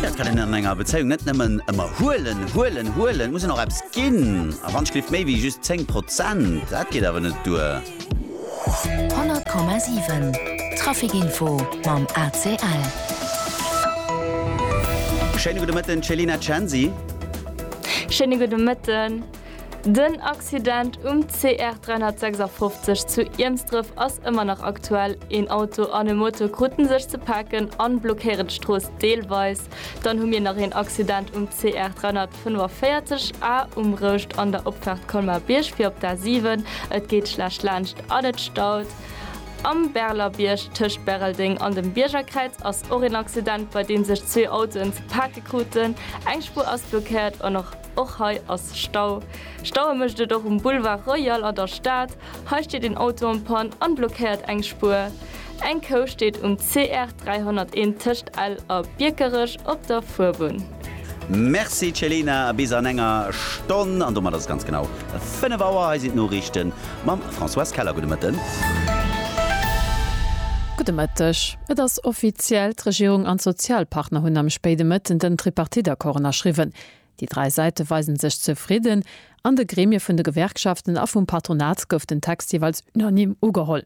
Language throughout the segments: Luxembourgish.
Dat kann een an enger Bezéiung net nëmmen ëmmer huelen, huelen, huelen. Et muss een och eppes ginn. A wann d'Schliff méi wéi just 10 Prozent, dat geet awer net duer. 100,7 Trafic-Info mam ACL. Schéine gudde Mëtten, Céline Acensi. Schéine gudde Mëtten. Den Accident um CR 356 zu Iermsdref ass ëmmer nach aktuell. Een Auto an e Moto kruten sech ze paken a blockéieren d'Strooss deelweis. Dann hu mir nach een Accident um CR 345 A um Rouscht an der Opfaart Colmar-Bierg fir op d'A7. Et geet schlecht laanscht an et staut. Am Berlerbierg tëscht Bäreldeng an dem Biergerkräiz ass och een Accident, bei deem sech zwee Autoen ze pake kruten. Eng Spuer ass blockéiert an och. Och hei ass Stau. Staue mécht et och um Boulevard Royal an der Stad. Hei steet een Auto en Panne an blockéiert eng Spuer. Eng Kou steet um CR 301 tëscht Ell a Biekerech op der Fuerbunn. Merci Celina, bis an enger Stonn, an domat ass et ganz genau 5 Auer. Hei sinn d'Noriichten mam Françoise Keller. Gudde Mëtten. Gudde Mëtteg. Et ass offiziell, D'Regierung an d'Sozialpartner hunn am spéide Mëtten den Tripartite-Accord ënnerschriwwen. Déi dräi Säite weisen sech zefridden. An de Gremie vun de Gewerkschaften a vum Patronat gouf den Text jeeweils unanime ugeholl.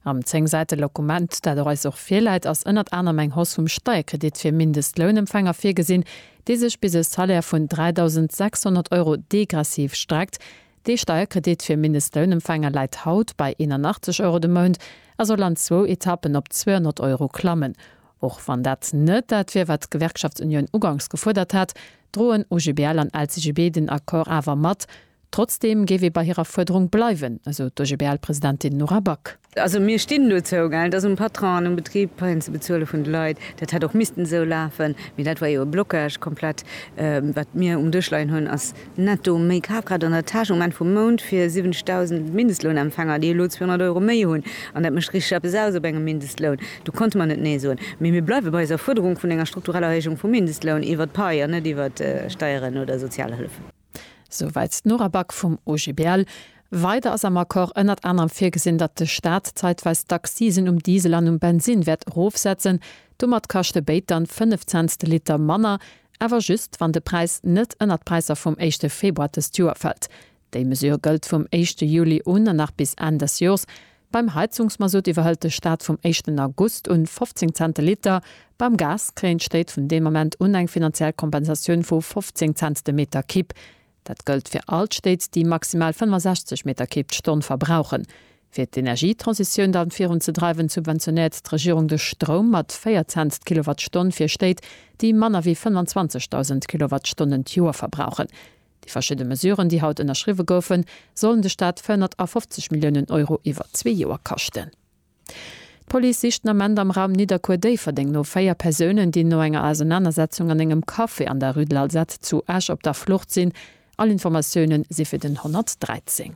Am zéng Säite Lokument, dat der eis och virläit, ass ënnert anerem eng Hausse vum Steierkredit fir Mindestlounempfänger virgesinn, dee sech bis e Salaire vun 3.600 Euro degressiv streckt. Dee Steierkredit fir Mindestlounempfänger läit haut bei 81 Euro de Mount a soll an zwou Etappen op 200 Euro klammen. Och wann dat net dat wier, wat d'Gewerkschaftsunioun ugangs gefuerdert hat, droen OGBL an LCGB den Accord awer mat. Trotzdeem géif ee bei hirer Fuerderung bleiwen, esou d'OGBL-Presidentin Nora Back. Also mir stinn dozou, et ass um Patron an um Betrib d'Paien ze bezuele vun de Leit. Dat hätt och missten esou lafen, mee dat war jo e Blocage komplett. Wat mir um Dësch leien hunn, ass netto méi Kafkraaft an der Täsch um Enn vum Mount fir 70.000 Mindestlounempfänger, déi elo 200 Euro méi hunn. An dat mécht richteg eppes aus op engem Mindestloun. Do konnte mer net Nee soen. Mee mir bleiwe bei eiser Fuerderung vun enger struktureller Erhéijung vum Mindestloun iwwert d'Pai an net iwwert Steieren oder Sozialhëllefen. Souwäit d'Nora Back vum OGBL. Weider ass am Accord ënnert anerem virgesinn, datt de Staat zeitweis d'Accisen um Diesel an um Bensinn wäert erofsetzen. Domat kaschte béid dann 5 Cents de Liter manner, awer just wann de Präis net ënnert d'Präisser vum éischte Februar dëst Joer fält. Déi Mesure gëllt vum éischte Juli un an nach bis Enn des Joers. Beim Heizungsmasutt iwwerhëlt de Staat vum éischten August un 15 Cent de Liter. Beim Gas kréien d'Stéit vun deem Ament un eng finanziell Kompensatioun vu 15 Cent de Meter Kibb. Dat gëllt fir all d'Stéit, déi maximal 65 Meter Kibb d'Stonn verbrauchen. Fir d'Energietransitioun dann virun ze dreiwen, subventionéiert d'Regierung de Stroum mat 4 Cent d'Kilowattstonn fir Stéit, déi manner wéi 25.000 Kilowattstonnen d'Joer verbrauchen. Déi verschidde Mesuren, déi haut ënnerschriwwe goufen, sollen de Staat 450 Milliounen Euro iwwer zwee Joer kaschten. D'Police sicht den Ament am Raum Nidderkuer-Déifferdeng no véier Persounen, déi no enger Ausernanersetzung an engem Café an der Rue de l'Alzette zu Esch op der Flucht sinn. All Informatioune si fir den 113.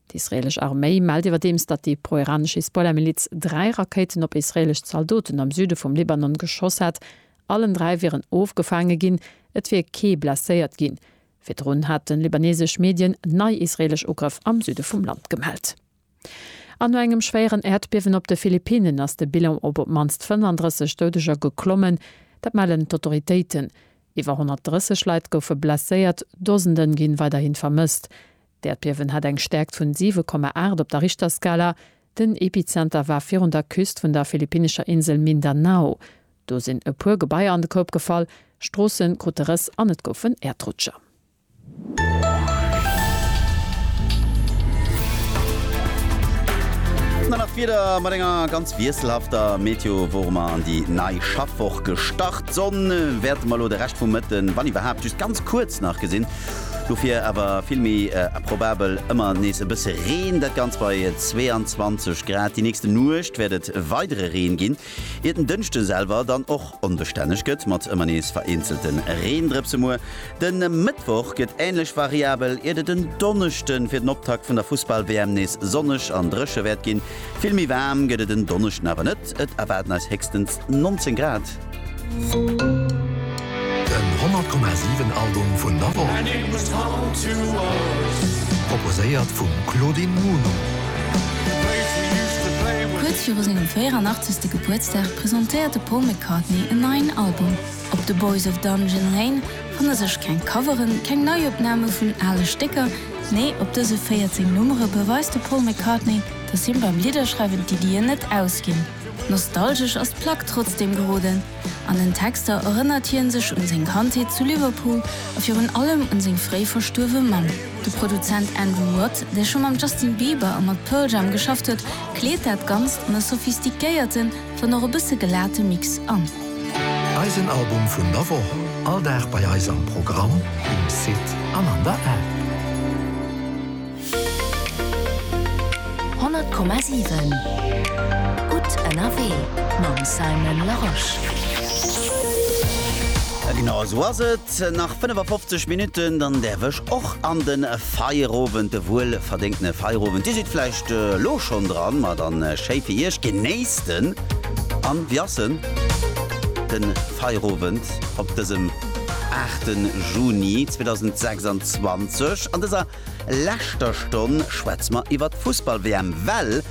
D'israeelesch Arméi mellt iwwerdeems, datt déi pro-iranesch Hisbollah-Miliz dräi Rakéiten op israeelesch Zaldoten am Süde vum Libanon geschoss hätt. Allen dräi wieren ofgefaange ginn, et wier kee blesséiert ginn. Virdrun haten libaneesesch Medien nei israeelesch Ugrëff am Süde vum Land gemellt. An no engem schwéieren Äerdbiewen op de Philippinen ass de Bilan op op d'mannst 35 Doudeger geklommen. Dat mellen d'Autoritéiten. Iwwer 130 Leit goufe blesséiert, Dosende ginn weiderhin vermësst. D'Äerdbiewen hat eng Stäerkt vun 7,8 op der Richterskala. Den Epizenter war virun der Küst vun der philippinnescher Insel Mindanao. Do sinn e puer Gebaier an de Koup gefall, Stroosse krute Rëss an et goufen Äerdrutscher. Dann nach d'Wieder mat enger ganz wiesselhafter Meteo wor mer an déi nei Schaffwoch gestart. D'Sonn wäerte mer elo de Rescht vum Mëtten, wann iwwerhaapt, just ganz kuerz nach gesinn. Dofir awer vill méi probabel ëmmer nees e bësse Reen, dat Ganzt bei 22 Grad. Déi nächste Nuecht wäert et weidere Reen ginn, iert den Dënschde selwer dann och onbestänneg gëtt mat ëmmer nees vereenzelte Reendrëpse. Muer de Mëttwoch gëtt änlech variabel, iert et en Donneschde fir den Optakt vun der Fussball-WM nees sonneg an dréche wäert ginn. Vill méi waarm gëtt et en Donneschden awer net, et erwaarden eis héchstens 19 Grad. Den 100,7 Album vun der Woch. Proposéiert vum Claudine Muno. Kuerz viru sengem 84. Gebuertsdag presentéiert de Paul McCartney en neien Album. Op The Boys of Dungeon Lane fanne sech keng Coveren, keng Neiopname vun ale Stécker, nee op dëse 14 Nummere beweist de Paul McCartney, dass him beim Lidderschreiwen d'Iddien net ausginn. Nostalgesch ass d'Plack trotzdeem geroden. An den Texter erënnert hien sech un seng Kandheet zu Liverpool a virun allem un seng fréi verstuerwe Mamm. De Produzent Andrew Watt, dee scho mam Justin Bieber a mat Pearl Jam geschafft huet, kleet dat Ganzt an e sophistiquéierten, wann och e bësse gelate Mix an. Eisen Album vun der Woch, all Dag bei eis am Programm, um Site an an der App. 100,7 Gutt ënnerwee mam Simon Larosche. Genau esou ass et, nach 55 Minutten, dann däerf ech och an de Feierowend, de wuel verdéngtene Feierowend. Dir sidd vläicht elo schonn dran, ma dann schéi fir Iech, genéisst en an wéi ass en, de Feierowend op dësem 8 Juni 2026 an dëser. leschter Stonn schwätze mer iwwert d'Fussball-WM, well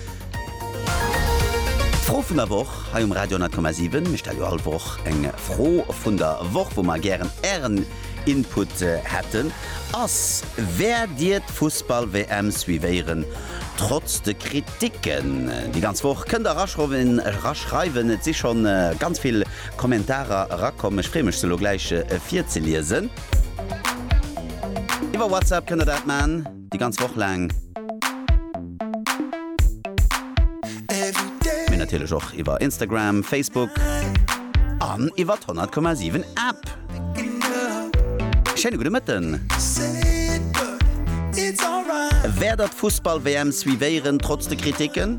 d'Fro vun der Woch hei um Radio 10,7, mir stelle jo all Woch eng Fro vun der Woch, wou mer gären Ären Input hätten, ass, Wäert Dir d'Fussball-WM suivéieren, trotz de Kriticken? Déi ganz Woch kënnt Der eraschreiwen, et si scho ganz vill Kommentarer erakomm, ech freeë mech se elo gläich virzeliesen. Iwwer WhatsApp kënnt der dat man, déi ganz Woch laang. Mee natierlech och iwwer Instagram, Facebook an iwwer d'Honnert Komma Siwen App. Schéine gudde Mëtten! Wäert der d'Fussball-WM suivéieren, trotz de Kriticken?